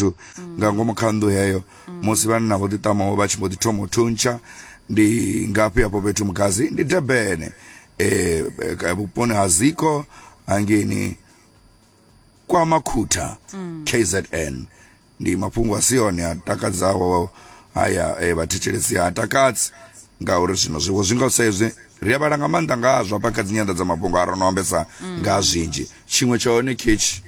zwithu nga ngomu kha nnḓu heyo musi vhanna vho ḓiṱamaho vha tshi mbo ḓi thoma u thuntsha ndi ngafhi hafho fhethu mugazi ndi debene eh, eh, vhuponi ha ziko hangeni kwa makhutha kzn ndi mafhungo a si one a takadzaho haya eh, vhathetshelesi ha takadzi ngauri zwino zwiwo zwi nga sa izwi ri a vhala nga maanḓa ngazwo hafha kha dzinyanda dza mafhungo a ro no ambesa nga ha zwinzhi tshiṅwe tsha hone ketshi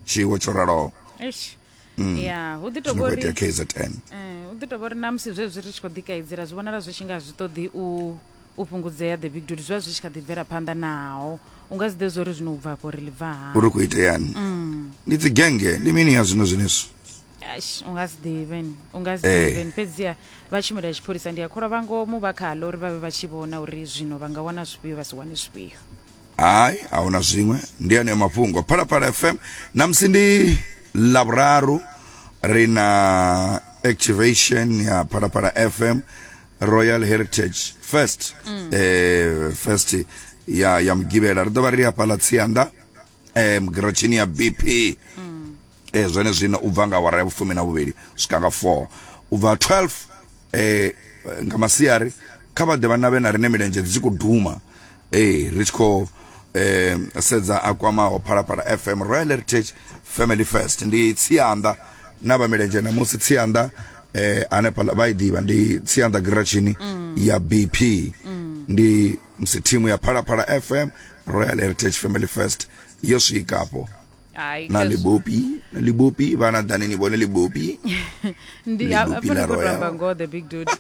tshiwo tsho raloho eish mm. ya hu ḓi tovhori kzn eh, hu ḓi tovha uri na musi zwezwi ri tshi khou ḓikaidzela zwi vhonala zwi tshi nga zwi ṱoḓi u u fhungudzea the big dude zwi vha zwi tshi kha ḓi bvela phanḓa naho u nga si ḓe zwo uri zwino u bva afho ri ḽi bva ha uri khou iteani mm. ndi dzi genge ndi mini ya zwino zwenezwo u nga si ḓivheni u nga si eh. ḓivheni fhedziha vha tshumelo ya tshipholisa ndi a kholwa vha ngomu vha khaḽo uri vha vhe vha tshi vhona uri zwino vha nga wana zwifhio vha si wane zwifhio hai a huna zwiṅwe ndi aneyo mafhungo phalaphala fm namusi ndi lavhuraru ri na activation ya phalaphala fm royal heritage fest mm. eh, fest ya, ya mugivhela ri ḓo vha ri hafhaḽa tsianda eh, mugirotshini ya bp mm. eh zwenezwino u bva nga awara ya vhufumi na vhuvhili swika nga 4 u bva 12 eh nga masiari kha vha ḓe vhana vhe na rine milenzhe dzi khou duma eh ri tshi khou eh sedza a kwamaho phalaphala FM Royal Heritage Family First ndi tsianda na vha milenzhe na musi tsianda eh hanefha vha i ḓivha ndi tsianda giratshini mm. ya BP mm. ndi msi thimu ya phalaphala FM Royal Heritage Family First yo swika hapo Ai, na cause- libopi na libopi vana dani ni vone libopi ndi Libopi afho ndi la khou Royal. tamba ngoho the big dude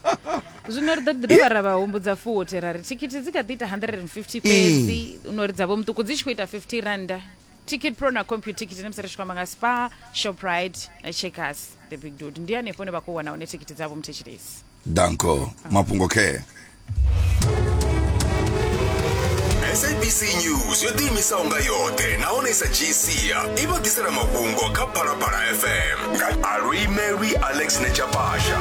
zwino ri ḓo ḓi dovha ra vha humbudza futhi ra ri thikhithi dzi kha ḓi ita 150 fhedzi no ri dzavho muṱuku dzi tshi khou ita 50 randa ticket pro na compu ticket na musi ri tshi khou amba nga spa shoprite na checkers the big dude ndi hanefho ne vha khou wana hone thikhithi dzavho muthetshilesi danko mafhungo care sabc news yo ḓiimisaho nga yoṱhe nahone sa gcia i vha ḓisela mafhungo kha phalaphala fm nga alwi mary alex nechapasha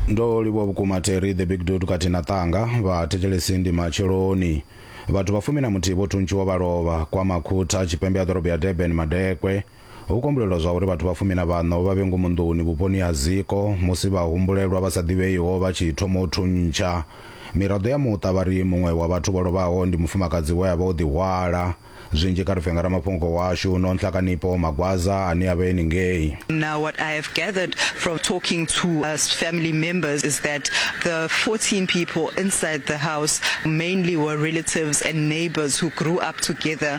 ndo livhuwa vhukuma terry the big dud kati na ṱanga vha thetshelesi ndi matsheloni vhathu vha fumi na muthihi vho thuntshiwa vha lovha kwa makhutha tshipembe ya ḓorobo ya durban madekwe Ho kombulelwa zwa uri vhathu vha fumi na vhaṋo vha vhe ngomu nḓuni vhuponi ha Ziko musi vhahumbulelwa vha sa ḓivheiho vha tshi thoma u thuntsha. Miraḓo ya muṱa vha ri muṅwe wa vhathu vho lovhaho ndi mufumakadzi we a vha o ḓihwala. Zwinzhi kha ri pfe nga ramafhungo washu Nonhlakanipo Magwaza ane a vha e ningei. Now what I have gathered from talking to us family members is that the 14 people inside the house mainly were relatives and neighbours who grew up together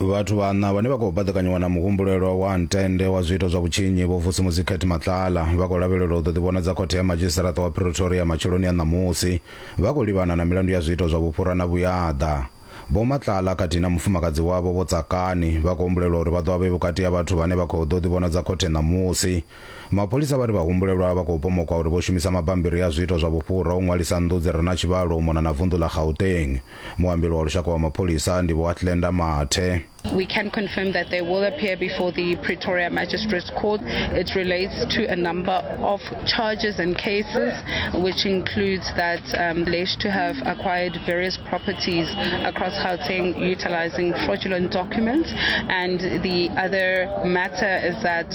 vhathu vhaṋa vhane vha khou baḓekanyiwa na muhumbulelwa wa ntende wa zwiito zwa vhutshinyi vho vusi muzikhet matlala vha khou lavhelelwa u ḓo ḓivhonadza khothe ya madzhisiṱaraṱa wa pretoria matsheloni a ṋamusi vha khou livhana na milandu ya zwiito zwa vhufhura na vhuyaḓa vho matlala khathihi na mufumakadzi wavho vho tsakani vha khou humbulelwa uri vha ḓo vha vhe vhukati ha vhathu vhane vha khou ḓo ḓivhonadza khothe ṋamusi Mapholisa vha ri vhahumbulelwa vha khou pomokwa uri vho shumisa mabambiri a zwiito zwa vhufhura u ṅwalisa nnḓu dzi re na tshivhalo u mona na vunḓu ḽa Gauteng. Muambeli wa lushaka wa mapholisa ndi Vho Athlenda Mathe. We can confirm that they will appear before the Pretoria Magistrates Court. It relates to a number of charges and cases, which includes that um, alleged to have acquired various properties across Gauteng utilizing fraudulent documents. And the other matter is that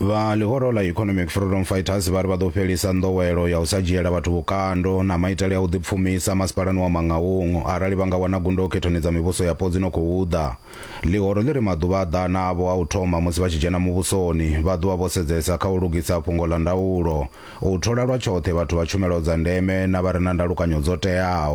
Vha ḽihoro ḽa Economic Freedom Fighters vha ri vha ḓo fhelisa nḓowelo ya u sa dzhiela vhathu vhukando na maitele a u ḓipfumisa masipalani wa Mangaung arali vha nga wana gundo khethoni dza mivhuso yapo dzi no khou ḓa. Ḽihoro ḽi ri maḓuvha a ḓana avho a u thoma musi vha tshi dzhena muvhusoni, vha ḓovha vho sedzesa kha u lugisa fhungo ḽa ndaulo, u thola lwa tshoṱhe vhathu vha tshumelo dza ndeme na vha re na ndalukanyo dzo teaho.